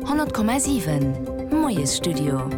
100,7 Moiesstudio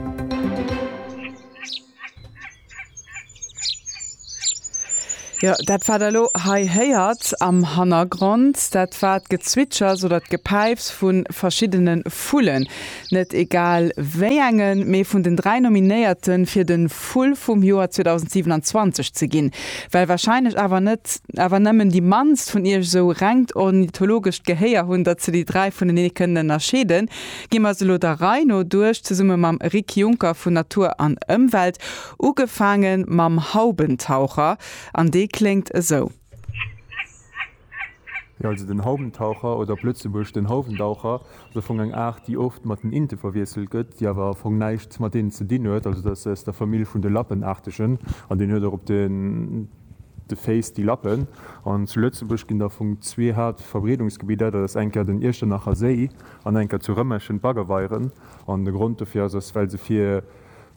Jo, dat wat der elo hei héiert am Hannergrond, dat war d'Gezwitschers oder d'Gepäifs vu verschiddene Vullen. Net egal wéi engen, mee vun den dräi Nominéierte fir de Vull vum Joer 2027 ze ginn. Well warscheinlech awer net. Awer nemmen déi mannst vun iech esou rengt ornithologescht Gehéier hun, datt se déi dräi vunenee kënnen ënnerscheeden, gi mer se elo der Rei no duerch, zesumme mam Rik Junker vun Natur an Ëmwelt, ugefaange mam Haubentaucher, an dee kléngt esou. Jo, also den Haubentaucher, oder op Lëtzebuergesch den Houwendaucher, ass am Fong eng Aart, déi oft mat den Inte verwiesselt gëtt, déi awer am Fong näischt mat deenen ze dinn huet. Also dat ass aus der Famill vun de Lappenaartegen, an deen huet och op de. de Féiss déi Lappen. An zu Lëtzebuerg ginn der vum zwee Haaptverbreedungsgebidder, dat ass eng Kéier den Iechternacher Séi an eng Kéier zu Rëmerschen d'Baggerweieren. An de Grond dofir ass, ass well se fir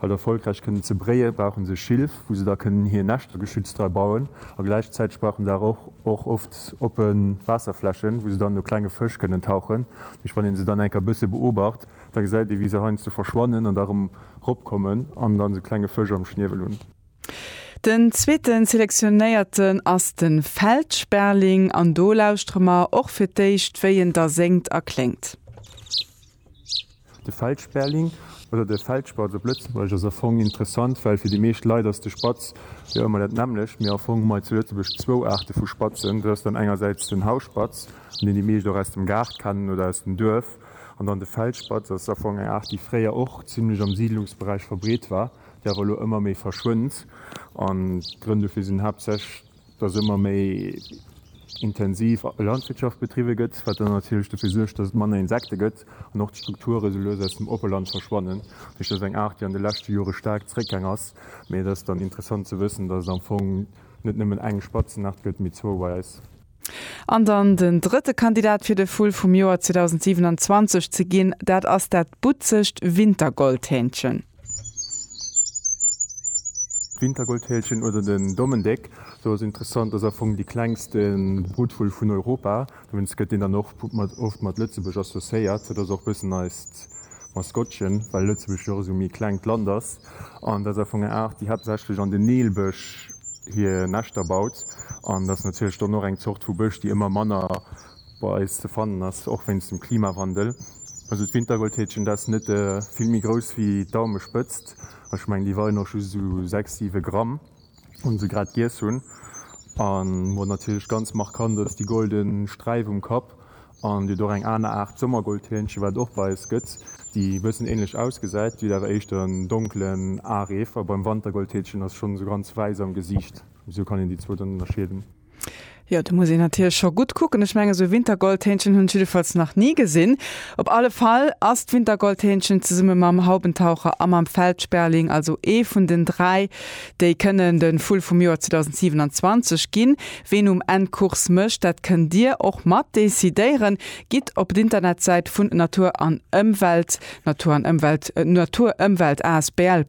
halt erfolgräich kënnen ze bréie brauche se Schilf, wou se da kënnen hir Näschter geschützt dra bauen. A gläichzäiteg brauche se awer och oft oppe Waasserflächen, wou se dann no klenge Fësch kënnen tauchen. Duerch wann ee se dann eng Kéier e bësse beobacht, da gesäit ee wéi se heiansdo verschwannen an da erëm eropkommen an dann esou klenge Fësch am Schniewel hunn. Den zweeten Selektionéierten ass den Feld Sperling an do lauschtere mer och fir d'éischt wéi en da séngt a kléngt. De Feld Sperling, oder de Feldspatz op Lëtzebuergesch, ass a Fong interessant, well fir déi meescht Leit ass de Spatz jo ëmmer dat nämmlecht. Mee a Fong hu mer zu Lëtzebuerg zwou Aarte vu Spatzen. Dat ass dann engersäits den Hausspatz, an deen déi meescht och aus dem Gaart kennen oder aus dem Duerf. An dann de Feldspatz ass a Fong eng Aart, déi fréier och zimlech am Siidlungsberäich verbreet war. déi awer elo ëmmer méi verschwënnt. An d'Grënn dofir sinn haaptsächlech, dass ëmmer méi intensiv Landwirtschaft betriwwe gëtt, wat dann natierlech dofir suergt, dass et manner Insekte gëtt an och d'Strukture sou lues aus dem Oppeland verschwannen. Dat heescht, dat ass eng Aart, déi an de leschte Jore staark zeréckgaang ass. Mee et ass dann interessant ze wëssen, dass et am Fong net nëmmen eng Spatzenaart gëtt, mee zwou bei eis. An dann den drëtte Kandidat fir de Vull vum Joer 2027 ze ginn, dat ass dat butzegt Wintergoldhähnchen. D'Wintergoldhähnchen oder den Dommendéck, sou ass interessant, ass am Fong dee klengste Brutvull vun Europa. Dowéinst gëtt deen dann och oft mat Lëtzebuerg associéiert. Dat ass och e bëssen eist Maskottchen, well Lëtzebuerg jo och esou e méi klengt Land ass. An dat ass am Fong eng Aart, déi haaptsächlech an de Neelbësch hir Näschter baut. An dat ass natierlech dann och eng Zort vu Bësch, déi ëmmer manner bei eis ze fannen ass, och wéinst dem Klimawandel. Also d'Wintergoldhäkchen, dat ass net vill méi grouss wéi d'Daumespëtzt. Ech mengen, déi weien och just esou sechs, siwe Gramm. un se grad giess hunn an wat natierlech ganz markant ass, déi golden Sträif um Kapp an et gëtt och eng aner Aart Sommergoldhähnchen wat et och bei eis gëtt déi e bëssen ähnlech ausgesäit, déi huet awer éischter en donkelen Areef a beim Wantergoldhähnchen ass schonn esou ganz wäiss am Gesiicht, esou kann een déi zwou dann ënnerscheeden. Jo, do muss een natierlech scho gutt kucken. Ech mengen, esou e Wintergoldhähnchen hunn ech jiddefalls nach ni gesinn. Op alle Fall ass d'Wintergoldhähnchen zesumme mam Haubentaucher a mam Feldsperling also ee vun den dräi, déi kënnen de Vull vum Joer 2027 ginn. Ween um Enn d'Course mécht, dat kënnt Dir och mat decidéieren. Gitt op d'Internetsäit vun Natur an Ëmwelt, Natur an Ëmwelt, naturëmwelt asbl.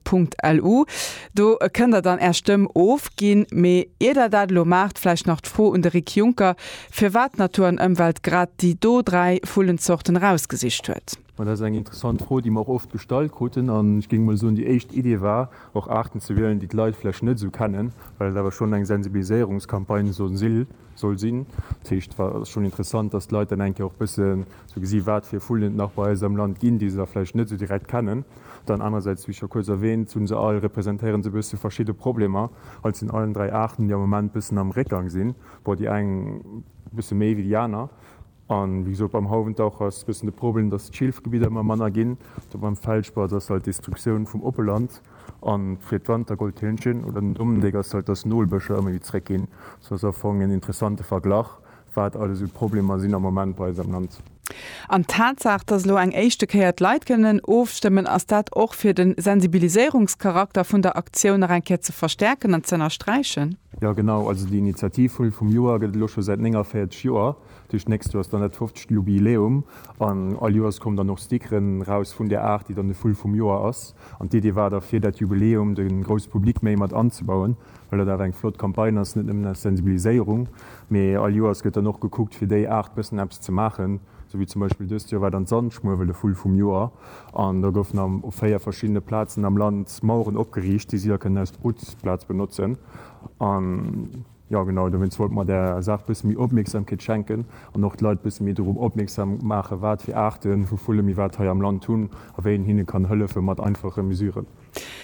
Lu. Do kënnt Der dann Är Stëmm ofginn. Mee ier Der dat elo maacht, vläicht nach d'Fro un de Rick Juncker, firwat d'Natur an Ëmwelt grad déi do dräi Vullenzorten erausgesicht huet. Ma dat ass eng interessant Fro, déi mer och oft gestallt kruten. An ech géing emol soen, déi éischt Idee war och Aarten ze wielen, déi d'Leit vläicht net esou kennen, well et awer schonn eng Sensibiliséierungscampagne soll sinn. Dat heescht, et ass schonn interessant, datt d'Leit dann eng Kéier och e bësse ze gesi wat fir Vullen et nach bei eis am Land ginn, déi se da vläicht net esou direkt kennen. Dann anerersäits, wéi scho kuerz erwäänt, hu se all, representéieren se e bësse verschidde Problemer, also sinn allen dräi Aarten, déi am Moment bëssen am Réckgang sinn, bon déi eng e bësse méi wéi déi aner. A wéi gesot, beim Hauwendaucher ass e bëssen de Problem, datt d'Schilfgebidder ëmmer manner ginn, do beim Feldspatz ass halt d'Destruktioun vum oppe Land a fir d'Wantergoldhirnchen oder den Dommendéck ass halt, datt d'Nolbëscher ëmmer méi zeréckginn. Sou ass am Fong en interessante Verglach, wat alles esou d'Problemer sinn am Moment bei eis am Land. An d'Tatsaach, dass elo eng éischte Kéier d'Leit kënnen ofstëmmen, ass dat och fir de Sensibiliséierungscharakter vun der Aktioun nach eng Kéier ze verstärken an z'ënnersträichen? Jo, genau. Also déi Initiativvull vum Joer gëtt et elo scho säit 49 Joer. Duerch d'nächst Joer ass dann dat 50. Jubiläum an all Joers kommen dann och Stickeren raus vun där Aart, déi dann de Vull vum Joer ass. An d'Idee war da, fir dat Jubiläum de grousse Public méi mat anzebauen, Well dat awer eng flott Campagne ass, net nëmmen aus Sensibiliséierung, mee all Joers gëtt dann och gekuckt, fir déi Aart bëssen eppes ze maachen. Sou wéi zum Beispill dëst Joer war dann d'Sandschmuewel de Vull vum Joer. An do goufen am op véier verschiddene Plazen am Land Maueren opgeriicht, déi si da kënnen aus Brutplaz benotzen. An, jo genau, dowéinst wollte mer där Saach bësse méi Opmierksamkeet schenken an och d'Leit bësse méi dorop opmierksam maachen, wat fir Aarte vu Vulle mir wat hei am Land hunn a wéi een hinne kann hëllefe mat einfache Mesuren.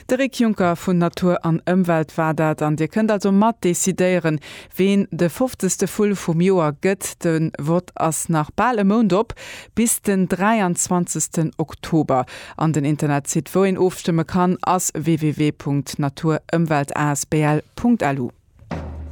De Rick Juncker vun Natur an Ëmwelt war dat an Dir kënnt also mat decidéieren, ween de fofzegste Vull vum Joer gëtt. De Vott ass nach bal e Mount op, bis den 23 Oktober. An den Internetsite, wou een ofstëmme kann, ass www.naturëmweltasbl.lu.